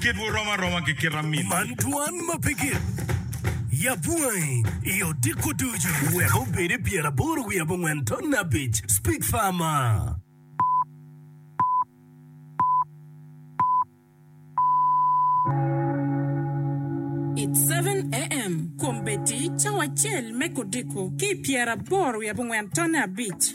Kitwu rom aroma ki kit amin. Man twan ma pe gin. Yab wangi i odiko ducu. Wek obedi pyeraboro wiye abongwen ton abic. Speak farmer. It's seven AM, Kombeddi cawa acel me kodiko ki i pyeraboro wiye abongwen ton abic.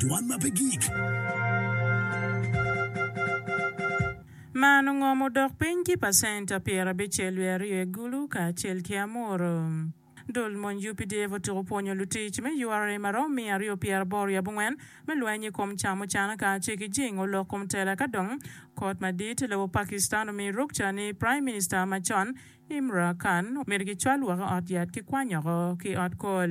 Dwan ma pe gik. Man ongom odok piny ki pacenta pyerabicel wiye aryo i Gulu kacel ki Amuru. Dul mony UPDF otyeko pwonyo lutic me ura ma romo miya aryo pyeraboro wiye abongwen me lweny i kom ca mucana kacel ki jingo lok kom tela ka dong kot madit lobo Pakistan omiyo rukca ni Prime Minister macon Imra Khan omyero gicwal woko ot yat ki kwanyoko ki ot kol.